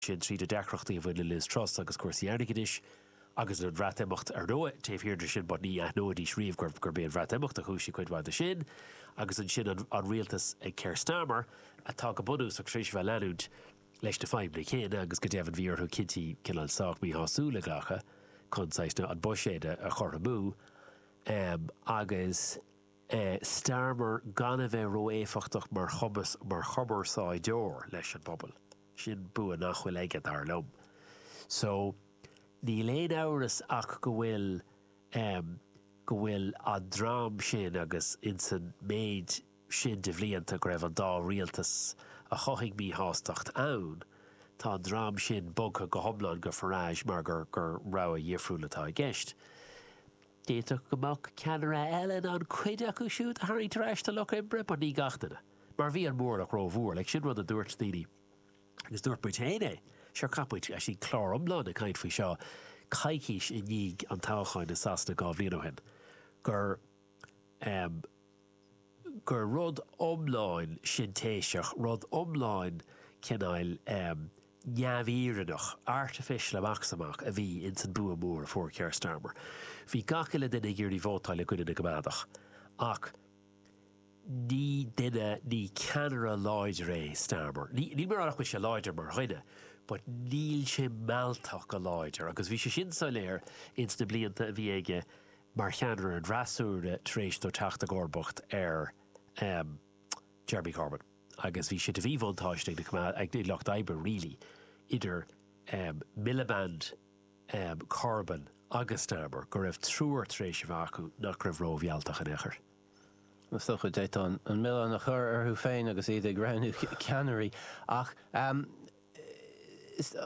sin tríd na deacrachtaí a bhain le Liz Truss agus cúrsaí airgeadais, agus an Bhreatimeacht, ar ndóigh, taobh thiar de sin, mar ní aithneoidís riamh gurb é an Bhreatimeacht a chúisigh cuid mhaith de sin, agus ansin an rialtas ag Keir Starmer, atá go bunúsach tar éis a bheith ag leanúint leis na fadhbanna céanna, agus go deimhin bhí orthu cinntí cineál sách míshásúil a ghlacadh chun saghas, na, an buiséad a chothromú, agus Starmer gan a bheith ró-éifeachtach mar chumas, mar chumarsáideoir leis an bpobal. Sin bua nach bhfuil aige, dar liom. So, níl aon amhras ach go bhfuil em go bhfuil an dream sin agus insan méid sin de bhlianta go raibh an dá rialtas a chothaigh míshástacht ann, tá an dream sin bogtha go hiomlán go Farage mar gur gur rogha dhifriúil atá i gceist. D'fhéadfadh go mbeadh ceannaire eile in ann cuid acu siúd a tharraingt ar ais sa Lucht Oibre, but ní gach duine, mar bhí an móramh ró-mhór, like sin rud a dúirt daoine, agus dúirt muid féin é, sure chaith muid actually clár iomlán ag caint faoi seo coicís i ndiaidh an toghcháin i Sasana dhá bhliain ó shin, gur, em, gur rud iomlán sintéiseach, rud iomlán cineáil neamhfhírinneach, artificial amach is amach, a bhí ins an bua mór a fuair Keir Starmer. Bhí gach uile duine ag iarraidh vótáil i gcoinne na gCoimeádach, ach ní duine, ní ceannaire láidir é Starmer. Ní, níl mé ag rá nach bhfuil sé láidir mar dhuine, but níl sé mealltach go láidir, agus bhí sé sin soiléir ins na blianta a bhí aige mar cheannaire an fhreasúra tar éis dó teacht i gcomharbacht ar Jeremy Corbyn agus bhí sé de mhíbhuntáiste ag na, ag Lucht Oibre really, idir Miliband, Corbyn agus Starmer, go raibh triúr tar éis a bheith acu nach raibh rómhealltach in aon chor. Is dócha go bhféadfá an milleán a chur orthu féin agus iad ag roghnú ceannairí ach.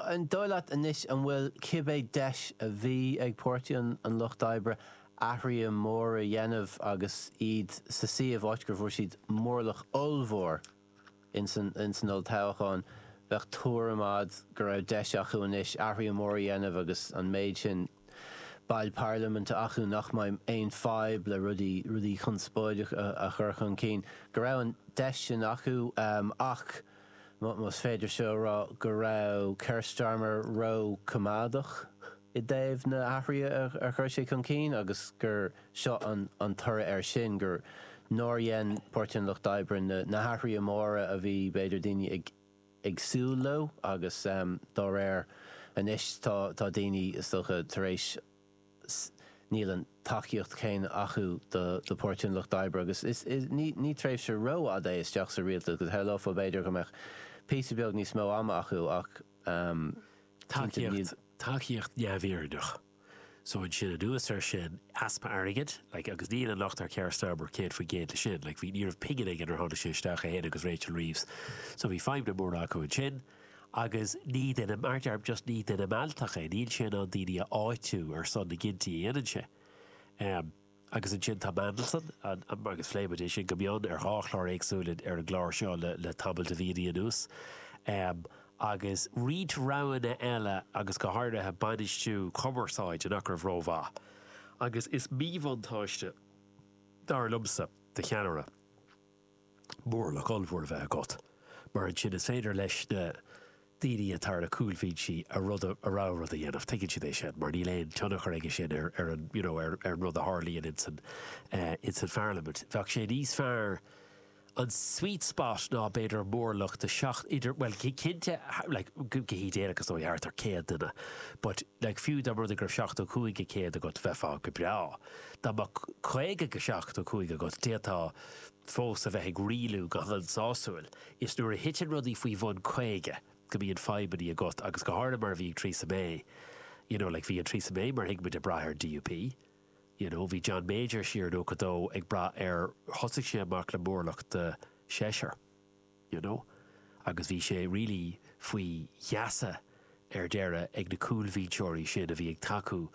An dóigh leat anois an bhfuil cibé deis a bhí ag Páirtí an Lucht Oibre athruithe móra a dhéanamh agus iad sa suíomh, áit gur bhfuair siad móramh ollmhór ins an olltoghchán, bheadh tuairim a'd go raibh deis acu anois athruithe móra a dhéanamh agus an méid sin baill parlaiminte acu nach mbeidh aon fadhb le rudaí, rudaí conspóideacha a chur chun cinn, go raibh an deis sin acu ach, más féidir seo a rá, go raibh Keir Starmer ró-choimeádach i dtaobh na hathruithe a chur sé chun cinn agus gur seo an toradh air sin, gur, nár dhein Páirtí an Lucht Oibre na hathruithe móra a bhí, b'fhéidir, daoine ag. ag súil leo agus dá réir anois tá tá daoine is dócha tar éis níl an tacaíocht chéanna acu do Pháirtí an Lucht Oibre agus ní tréimhse rófhada é isteach sa rialtas go shamhlófá b'fhéidir go mbeadh píosa beag níos mó ama acu ach cinnte níl tacaíocht tacaíocht neamhfhírinneach. So ansin anuas air sin, easpa airgid, like, agus níl an locht ar Keir Starmer céad faoin gcéad leis sin, like, bhí, ní raibh pingin acu nuair a tháinig sé isteach, é féin agus Rachel Reeves, so bhí fadhbanna móra acu ansin. Agus ní duine, mar a deir, just ní duine mealltach é, níl sé in ann daoine a áitiú ar son na gcinntí a dhéanann sé. Um. agus ansin tá Mandelson, an, agus phléamar é sin go mion ar dhá chlár éagsúil in, ar an gclár seo le, le tamall de mhíonnaí anuas. em, agus roinnt roghanna eile agus go háirithe bainistiú cumarsáide nach raibh rómhaith. Agus is míbhuntáiste é, dar liomsa, do cheannaire. mórlach ollmhór a bheith agat, mar ansin is féidir leis na daoine atá ar na cúlbhinsí a rud a, a rogha rud a dhéanamh, tuigeann sé é sin, mar níl aon tionchar aige sin ar, ar an, you know, ar, ar an rud a tharlaíonn in san, in san Pharlaimint. Bheadh sé níos fearr, an sweet spot ná b'fhéidir mórlach de seacht, idir, bhuel cinnte, like, go hidéalach is dóigh, thart ar céad duine, but like fiú dá mba rud é go raibh seachtó cúig go céad agat, bheifeá go breá. Dá mbeadh caoga go seachtó cúig agat, d'fhéadfá. fós a bheith ag rialú go han-sásúil. Is nuair a thiteann rudaí faoi bhun 50 go mbíonn fadhbannaí agat agus go háirithe mar a bhí ag Theresa May you know like bhí an Theresa May mar a thuigimid ag braith ar DUP you know bhí John Major siar in 92 ag braith ar thosaigh sé amach le mórlach de seisear. you know. Agus bhí sé really faoi gheasa ar deireadh ag na cúlbhinseoirí sin a bhí ag tacú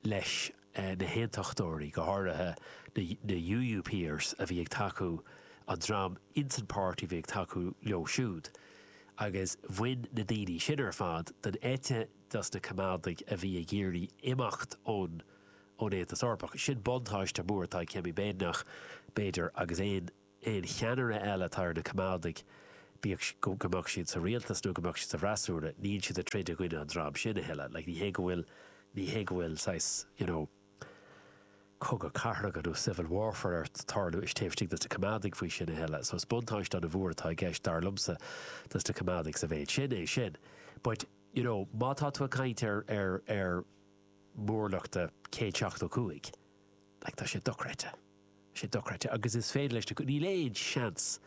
leis na hAontachtóirí, go háirithe na UUPers a bhí ag tacú, an dream insan páirtí a bhí ag tacú leo siúd. Agus bhain na daoine sin ar fad den eite dos na Coimeádaigh a bhí ag iarraidh imeacht ón Aontas Eorpach. Sin buntáiste mór atá ag Kemi Badenoch, b'fhéidir, agus aon aon cheannaire eile atá ar na Coimeádaigh, bíodh go mbeadh siad sa rialtas nó go mbeadh siad sa bhfreasúra, níl siad ag troid i gcoinne an dream sin a thuilleadh. Like, ní hé go bhfuil, ní hé go bhfuil saghas, you know, cogadh cathartha nó civil warfare ag tarlú istigh, taobh istigh dos na Coimeádaigh faoi sin a thuilleadh. So is buntáiste ana mhór atá i gceist, dar liomsa, dos na Coimeádaigh sa mhéid sin, é sin. But, you know, má tá tú ag caint ar, ar, ar mhórlach de 175, like, tá sé dochreidte. sé dochreidte agus is féidir leis na. Níl aon seans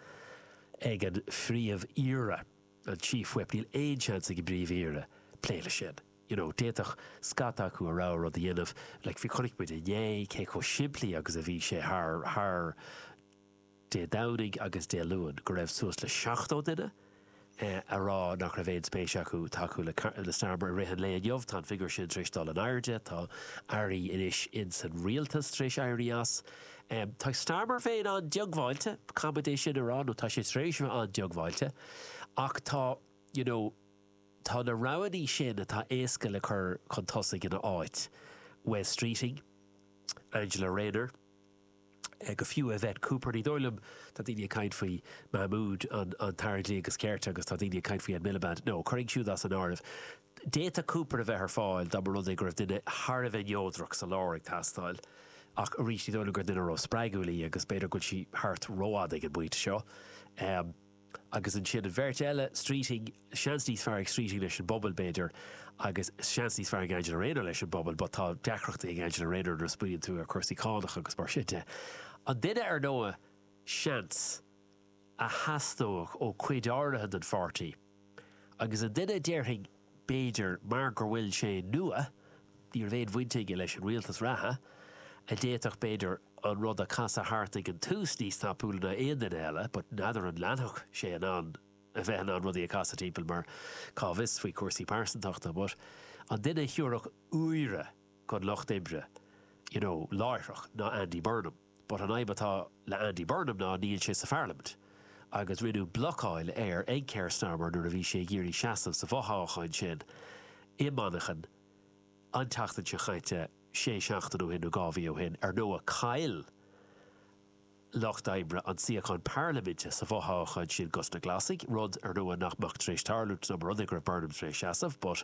ag an phríomh-aoire an chief whip, níl aon seans ag an bpríomh-aoire plé leis sin. You know, d'fhéadfadh scata acu a rogha rud a dhéanamh, like, bhí, chonaic muid inné cé chomh simplí agus a bhí sé thar, thar Dé Domhnaigh agus Dé Luain, go raibh suas le seachtó duine, a rá nach raibh aon spéis acu tacú le Starmer i rith an lae inniu. Tá an figiúr sin tar éis dul in airde. Tá airí anois ins an rialtas tar éis éirí as. Tá Starmer féin an-diongbháilte, caithfimid é sin a rá, nó tá sé tar éis a bheith an-diongbháilte. Ach tá, you know, tá na roghannaí sin atá éasca le cur chun tosaigh ina áit, Wes Streeting, Angela Rayner, nó fiú Yvette Cooper. Ní dóigh liom, tá daoine ag caint faoi Mahmood an tAire Dlí agus Cirt agus tá daoine ag caint faoi Ed Miliband. Now, chuirfinn iad siúd as an áireamh. D'fhéadfadh Cooper a bheith ar fáil dá mba rud é go raibh duine thar a bheith neodrach sa lár ag teastáil, ach arís, ní dóigh liom gur duine ró-spreagúil í agus b'fhéidir go bhfuil sí thart rófhada ag an bpointe seo. Agus ansin an bheirt eile, Streeting, seans níos fearr ag Streeting leis an bpobal, b'fhéidir, agus seans níos fearr ag Angela Rayner leis an bpobal, but tá deacrachtaí ag Angela Rayner nuair a smaoiníonn tú ar cúrsaí cánach agus mar sin de. An duine ar ndóigh, seans, a theastódh ó cuid áirithe den pháirtí, agus an duine a déarfainn, b'fhéidir, mar go bhfuil sé nua, ní raibh aon bhaint aige leis an rialtas reatha, a d'fhéadfadh, b'fhéidir, an rud a casadh thart ag an tús níos tapúla ná aon duine eile, but n'fheadar an leanfadh sé in ann a bheith in ann rudaí a casadh timpeall mar cá bhfios faoi chúrsaí pearsantachta, but an duine a thabharfadh úire chun lucht oibre, you know, láithreach ná Andy Burnham. But an fhadhb atá le Andy Burnham ná níl sé sa pharlaimint, agus rinneadh blocáil air ag Keir Starmer nuair a bhí sé ag iarraidh seasamh sa bhfothoghchán sin i Manchain, an tseachtain seo chaite, sé seachtain ó shin nó dhá mhí ó shin, ar ndóigh, chaill lucht oibre an tsuíochán parlaiminte sa bhfothoghchán sin dos na Glasaigh, rud, ar ndóigh, nach mbeadh tar éis tarlú dá mba rud é go raibh Burnham tar éis seasamh, but,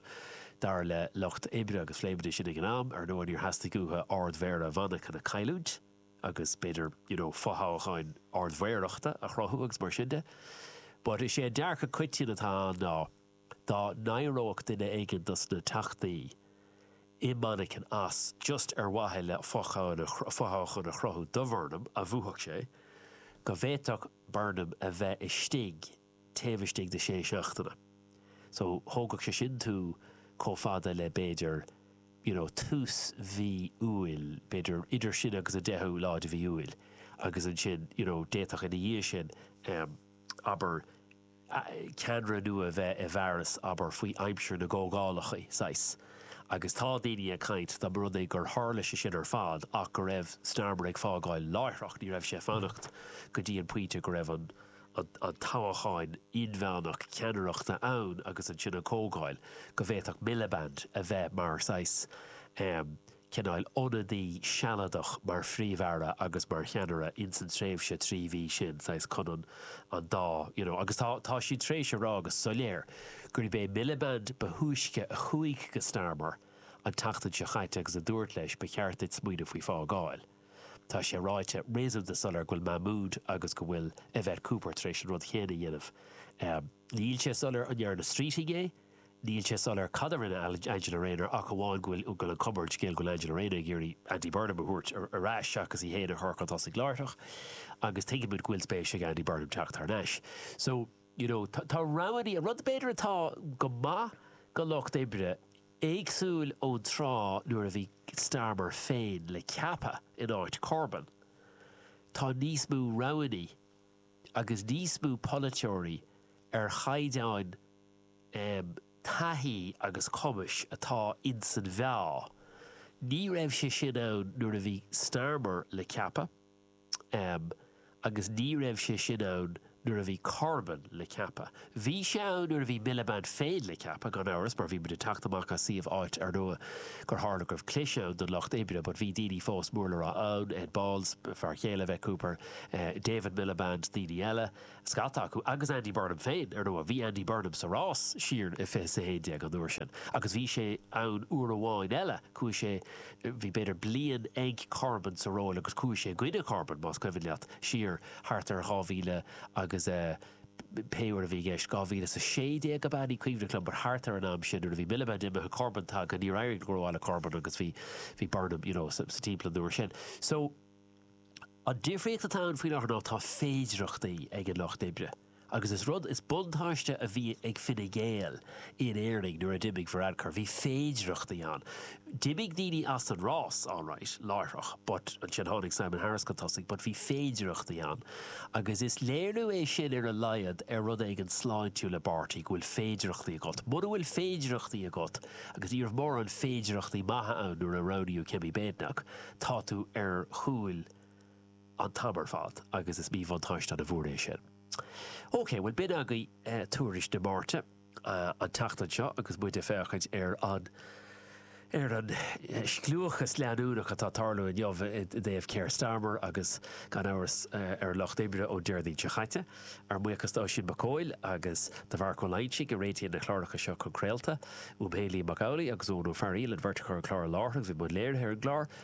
dar le lucht oibre agus phléamar sin ag an am, ar ndóigh, níor theastaigh uathu Ard-Mhéara Mhanchain a chailliúint, agus b'fhéidir, you know, fothoghchán Ard-Mhéarachta a chruthú agus mar sin de. But, is é an dearcadh coitianta atá ann ná. dá n-éireodh duine éigin dos na teachtaí i Manchain as, just ar mhaithe le fothoghchán a chruthú do Bhurnham, a bhuafadh sé, go bhféadfadh Burnham a bheith istigh taobh istigh de sé seachtaine. So, thógfadh sé sin tú chomh fada le, b'fhéidir, you know, tús mhí Iúil, b'fhéidir idir sin agus an deichiú lá de mhí Iúil, agus ansin, you know, d'fhéadfadh ina dhiaidh sin, abair, ceannaire nua bheith i bhfearas, abair, faoi aimsir na gcomhdhálacha, saghas. Agus tá daoine ag caint, dá mba rud é gur tharla sé sin ar fad ach go raibh Starmer ag fágáil láithreach, ní raibh sé ag fanacht go dtí an pointe go raibh an toghchán inmheánach ceannaireachta ann agus ansin an comhdháil, go bhféadfadh Miliband a bheith mar saghas, cineál ionadaí sealadach mar Phríomh-Aire agus mar cheannaire in san tréimhse trí mhí sin, saghas chun an an dá you know agus tá tá siad tar éis a rá go soiléir gurb é Miliband ba thúisce a chuaigh go Starmer an tseachtain seo chaite agus a dúirt leis ba cheart duit smaoineamh faoi fágáil. Tá sé ráite réasúnta soiléir go bhfuil Mahmoud agus go bhfuil Yvette Cooper tar éis an rud chéanna a dhéanamh. Níl sé soiléir an ndearna Streeting é, Níl sé soiléir cad a rinne Angela Rayner ach amháin go bhfuil an cupboard, scéal go bhfuil Angela Rayner ag iarraidh Andy Burnham a thabhairt ar ais seachas í féin a chur chun tosaigh láithreach agus tuigimid go bhfuil spéis ag Andy Burnham teacht thar n-ais. So, you know, tá roghannaí, an rud b'fhéidir atá go maith do Lucht Oibre, éagsúil ón tráth nuair a bhí Starmer féin le ceapadh in áit Corbyn, tá níos mó roghannaí, agus níos mó polaiteoirí ar chaighdeán taithí agus cumais atá ins an mheá. Ní raibh sé sin ann nuair a bhí Starmer le ceapadh, agus ní raibh sé sin ann nuair a bhí Corbyn le ceapadh. Bhí sé ann nuair a bhí Miliband féin le ceapadh, gan amhras, mar bhí muid ag teacht amach as suíomh áit ar ndóigh gur tharla go raibh clis ann don Lucht Oibre but bhí daoine fós mór le rá ann, Ed Balls, fear chéile Yvette Cooper, David Miliband, daoine eile, scata acu, agus Andy Burnham féin, ar ndóigh. Bhí Andy Burnham sa rás siar i fiche is a haon déag an uair sin agus bhí sé ann uair amháin eile, chuaigh sé, bhí b'fhéidir bliain ag Corbyn sa ról agus chuaigh sé i gcoinne Corbyn, más cuimhin leat, siar thart ar 2000 agus eh. pé uair a bhí i gceist. 2016 ab ea, ní cuimhneach liom, but thart ar an am sin nuair a bhí Miliband imithe, Corbyn tagtha, níor éirigh go rómhaith le Corbyn agus bhí bhí Burnham, you know, sa timpeall an uair sin. So, an difríocht atá ann faoi láthair ná tá féidireachtaí ag an Lucht Oibre agus is rud, is buntáiste, bhí ag Fine Gael, In Éirinn, nuair a d'imigh Varadkar, bhí féidearthachtaí ann. D'imigh daoine as an rás, alright, láithreach, but ansin tháinig Simon Harris chun tosaigh, but bhí féidearthachtaí ann. Agus is léiriú é sin, ar a laghad, ar rud éigin sláintiúil i bpáirtí, go bhfuil féidearthachtaí agat. Muna bhfuil féidearthachtaí agat, agus ní raibh mórán féidearthachtaí maithe ann nuair a roghnaíodh Kemi Badenoch, tá tú ar chúil an t-am ar fad agus is míbhuntáiste ana-mhór é sin. OK, bhuel b'in agaibh tuairisc na Máirte, an tseachtain seo agus muid ag féachaint ar an ar an scliúchas leanúnach atá ag tarlú inniu i dtaobh Keir Starmer agus gan amhras ar an Lucht Oibre ón Déardaoin seo chaite. Ár mbuíochas d'Oisín Mac Cóil agus do Mharc Ó Loingsigh a réitíonn na cláracha seo chun craolta. Uaimse, Liam Mac Amhlaigh agus Eoin Ó Fearghail an bheirt a chur an clár i láthair agus a bhí i mbun léirithe ar an gclár.